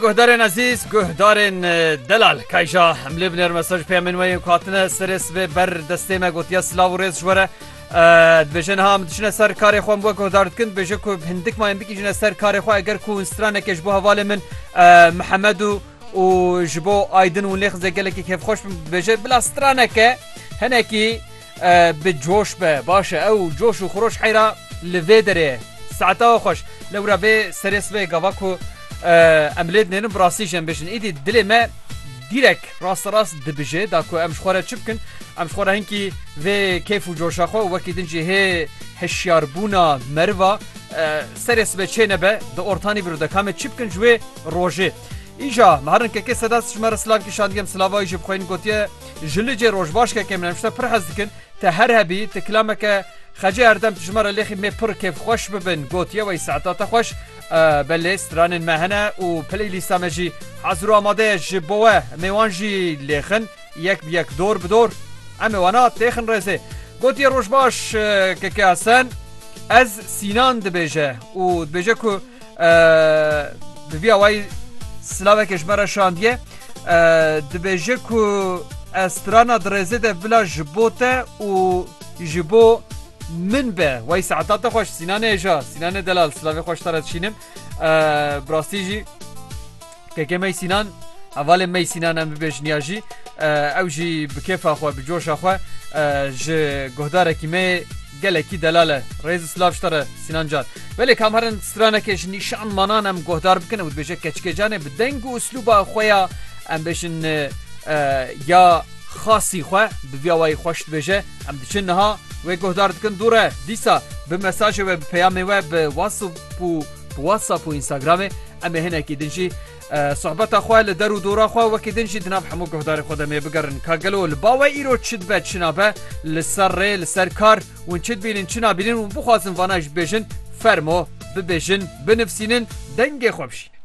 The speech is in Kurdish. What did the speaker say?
Guhdarên ezîz, guhdarên delal kayja em lê binêrme ser ji pêya min weyên ku hatine serê sibê ber destê me gotiye silav û rêz ji were dibêje niha em diçine ser karê xwe em wek guhdar dikin dibêje ku hindik mayên bikîjine ser karê xwe eger ku stranekê ji bo hevalê min mihemed û û ji bo aydin û nêxizê gelekî kêfxweş bin dibêje bila straneke hinekî Bi coş be baş e. Ew coş û xuroş heyra li vê derê ye. Saetawa xweş. Lewra vê serê sibê gava ku em lê dinêrin bi rastî jî em bêjin. Îdî dilê me dîrek rasterast dibije da ku em ji xwe re çi bikin. Em ji xwe re hinkî vê kêf û coşa xwe û wekî din jî hê hişyarbûna meriva serê sibê çênebe di ortanî bi rû de ka me çi bikin ji wê rojê. Îja me herin kekê sedat ji me re silav kişandiye em silavayî jî bi xwe yên gotiye ji licê roj baş kekê min em ji te pir hez dikin te her hebî ti kilameke xecê herdem tu ji me re lêxî mê pir kêfxweş bibin gotiye wey saeta te xweş belê stranên me hene û playlîsta me jî hezir û amade ye ji bo we em ê wan jî lêxin yek bi yek dor bi dor em ê wana têxin rêzê gotiye roj baş kekê Hesen ez Sînan dibêje û dibêje ku Bi vî awayî silavekê ji me re şandiye dibêje ku ez strana di rêzê de bila ji bo te û ji bo min be wey saeta te xweş sînanê hêja sînanê delal silavê xweş te re dişînim bi rastî jî Keke Mey Sînan, hevalên Mey Sînan em bibêjin ya jî ew jî bi kêfa xwe, bi coşa xwe ji guhdarekî me yê gelekî delal e. Rêz û silav ji te re Sînan Can. Belê kam herin stranekê ji nîşan manan em guhdar bikin û dibêje Keçikê Canê bi deng û uslûba xwe ya em bêjin ya xasî xwe bi vî awayî xweş dibêje Em diçin niha wê guhdar dikin dû re dîsa bi mesajê we bi peyamê we bi WhatsApp û Bi WhatsApp û Instagramê em ê hinekî din jî sohbeta xwe li der û dora xwe wekî din jî di nav hemû guhdarên xwe de mê bigerin. Ka gelo li ba we îro çi dibe çi nabe, li ser rê, li ser kar, hûn çi dibînin çi nabînin, hûn bixwazin vana ji bibêjin, fermo, bibêjin, binivsînin, dengê xwe bişînin.